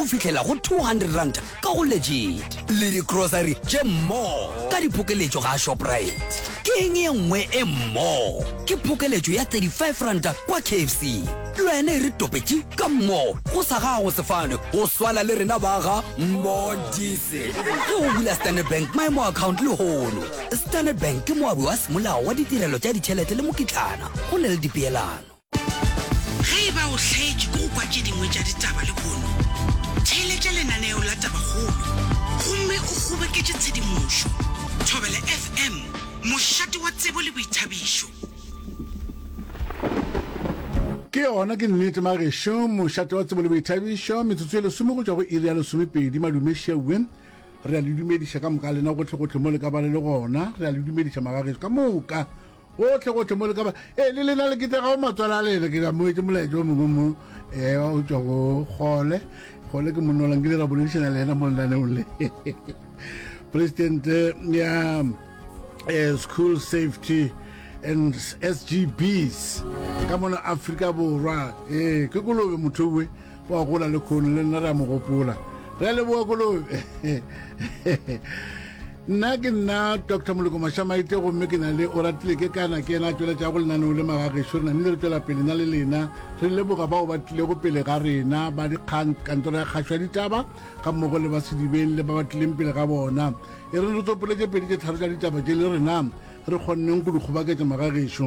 go fihlela go 200 ranta ka go legit le digrocery tše mmo ka diphokeletšo ga shoprite ke eng e nngwe e mmo ke phokeletšo ya 35 ranta kwa kfc lwena e re topetše ka mmo go sa gago sefane go swana le rena ba ga mmodise ge o bula standard bank maemo account le hono standard bank ke moabi wa semolao wa ditirelo tša ditšhelete le mokitlana go na le dipeelano Ge e ba o hlaetšwe ke go kwa tše dingwe tša ditaba lehono, theeletša lenaneo la Tabakgolo gomme o kgoboketše tshedimošo. Thobela FM, mošate wa tsebo le boithabišo. Ke yona ke nnete magešu, mošate wa tsebo le boithabišo, metsotso e lesome go tšwa go iri ya lesomepedi. Madume šeuwe re a le dumediša ka moka lena gotlhegotlhe mo le ka ba le le gona. Re a le dumediša magagešu ka moka. Gohle-gohle mo le ka ba, ee, le lena le ketlegago matswala a lena, ke ka moetše molaetša o mongwe mo ewa o tšwa go gole gole ke monolang ke le ra boledišana le yena mo lenaneong le president ya eh, school safety and sgbs ka mona afrika borwa ee ke kolobe motho uwe wa gola le khone le nna re a mo gopola re a leboa kolobe nna ke nna dr moloko mashamaite gomme ke na le o ratile ke kana ke ena a tšweletša go lenaneo le magagešo re namile re tšwela pele na le lena re leboga bao ba tlilego pele ga rena ba dikgang kantoro ya kgašo ya ditaba ga mmogo le ba sedibeng le ba ba tlileng pele ga bona e re re tsopoletše pedi tše tharo tša ditaba tše le rena re kgonneng go di kgobaketša magagešo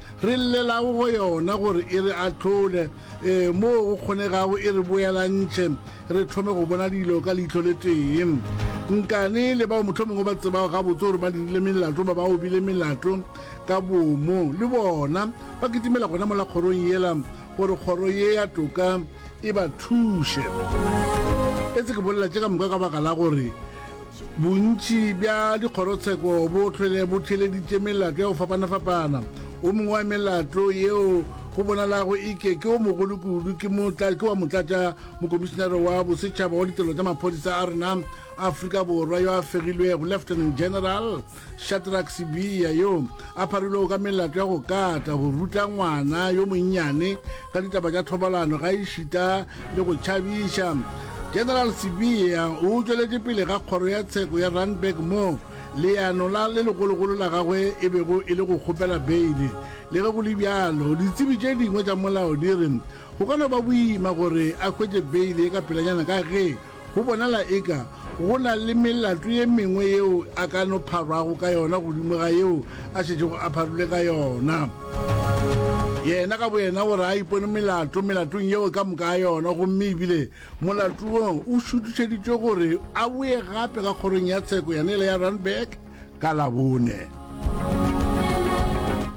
Re llelago go yona gore e re ahlole, ee, moo go kgonegago e re boelantšhe, re thome go bona dilo ka leihlo le tee. Nkane le bao mohlomongwe ba tsebago gabotse gore ba dirile melato ba ba obile melato ka boomo, le bona ba kitimela gona mola kgorong yela gore kgoro ye ya toka e ba thuše. Etse ke bolela tše ka moka ka baka la gore, Bontši bja dikgorotsheko bo hlwele bo theeleditše melato ya go fapana-fapana. O mongwe wa melato yeo go bonalago e ke ke o mogolo kudu ke motla ke wa motlatša mokomišinare wa bosetšhaba wa ditirelo tša maphodisa a rena Afrika Borwa yo a fegilwego, Lieutenant General Shadrack Sibiya yo a pharilwego ka melato ya go kata go ruta ngwana yo monnyane ka ditaba tša thobalano ga e šita le go tšhabiša general Sibiya o tšweletše pele ga kgoro ya tsheko ya Randburg mo leano la le legologolo la gagwe e bego e le go kgopela beile le ge go le bjalo ditsebi tše dingwe tša molao di re go ka no ba boima gore a hwetše beile ka pelanyana ka ge Go bonala eka go na le melato ye mengwe yeo a ka no pharwago ka yona godimo ga yeo a šetšego a pharilwe ka yona. Yena ka boyena o re a ipone melato melatong yeo ka moka a yona gomme ebile molato wo o šuthišeditšwe gore a boye gape ka kgorong ya tsheko yane le ya Randburg ka Labone.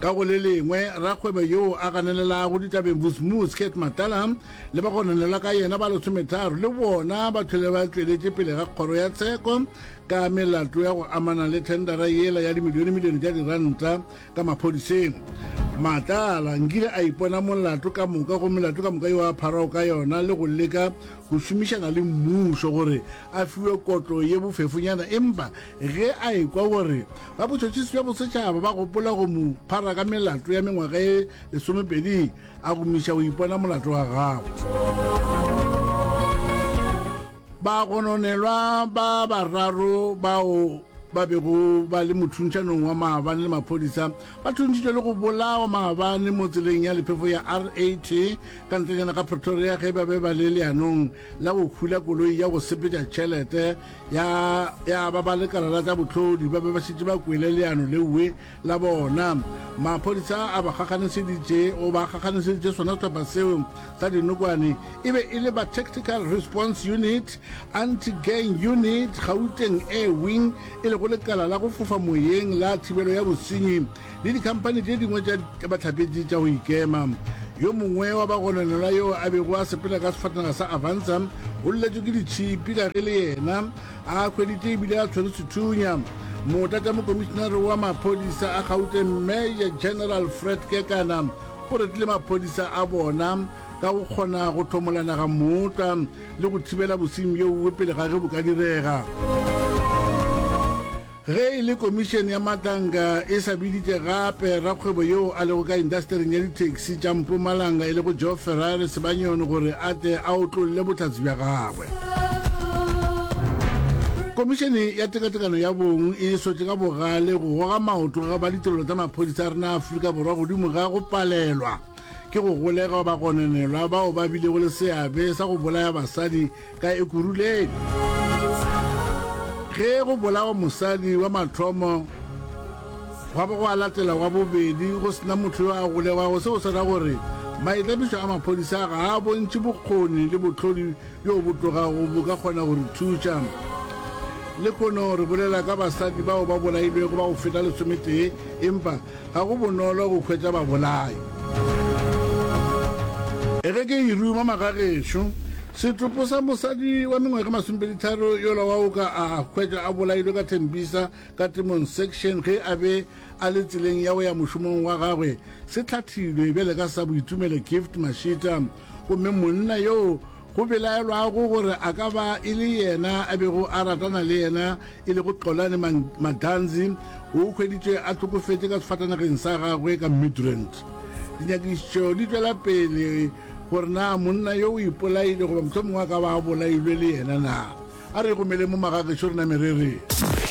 Ka go le lengwe, rakgwebo yoo a ganelelago ditabeng Vusmuus Kate Matala le ba go nanela ka yena ba lesometharo le bona ba tlhole ba tšweletše pele ga kgoro ya tsheko ka melato ya go amana le thendara yela ya dimilionemilione tša diranta ka maphodiseng matlala nkile a ipona molato ka moka go melato ka moka yo a pharago ka yona le go leka go šomišana le mmušo gore a fiwe kotlo ye bofefonyana empa ge a ekwa gore ba botšhotšhisi bja bosetšhaba ba gopola go mo phara ka melato ya mengwaga e lesomepedi a go miša o ipona molato wa gago bagononelwa ba bararo bao ba bego ba le mothuntšanong wa maabane le maphodisa ba thuntšitšwe le go bolawa maabane mo tseleng ya lephefo ya rat ka ntlenyana ga pretoria ge ba be ba le leanong la go khula koloi ya go sepetša tšhelete ya ba ba lekala la tsa botlhodi ba be ba šetše ba kwele leano leue la bona maphodisa a ba gaganiseditše o ba gaganiseditše sona sehlopha seo sa dinokwane e be e le ba tactical response unit anti-gang unit gauteng air wing e lego lekala la go fofa moyeng la thibelo ya bosenyi le dikhamphani tše dingwe tša batlhapetši tša go ikema yo mongwe wa bagononelwa yo a bego a sepela ka sefatanaga sa avansa o lletšwe ke ditšhipi ka ge le yena A hweditše e bile a tshwere sethunya mota tša mokomišinare wa maphodisa a Gauteng Major General Fred Kekana o retile maphodisa a bona ka go kgona go thomola naga mota le go thibela bosenyi bjo bongwe pele ga ge bo ka direga. Ge e le Komišene ya Matanka e sa biditše gape rakgwebo yoo a lego ka indasetering ya dithekisi tša Mpumalanga e lego Joe Ferrari Sebanyoni gore a tle a otlolle bohlatse bja gagwe, Komišene ya Tekatekano ya Bong e sotše ka bogale go goga maoto ga ba ditirelo tša maphodisa a rena a Afrika Borwa godimo ga go palelwa ke go golega ba gononelwa bao ba bilego le seabe sa go bolaya basadi ka Ekuruleni. Ge go bolawa mosadi wa mathomo, gwa bo go a latela wa bobedi go se na motho yo a golegwago, seo se ra gore maitlamišo a maphodisa ga a bontšhe bokgoni le bohlodi bjo bo tlogago bo ka kgona go re thuša. Lekono re bolela ka basadi bao ba bolailwego ba go feta lesometee, empa Ga go bonolo go hwetša babolai. Ge ke e ruma magagešo, setopo sa mosadi wa mengwaga e masomepeditharo yola wa Oka a hwetšwa a bolailwe ka Tembisa ka Temong Section ge a be a le tseleng ya go ya mošomong wa gagwe se hlathilwe bjale ka sa Boitumelo Gift Mashita gomme monna yoo Go belaelwago gore a ka ba e le yena a bego a ratana le yena e lego Xolani Maganzi, o hweditšwe a hlokofetše ka sefatanageng sa gagwe ka Midrand. Dinyakišišo di tšwela pele gore na monna yo o ipolaile goba mohlomongwe a ka ba a bolailwe le yena na. A re ikgomele mo magagešo re name re re.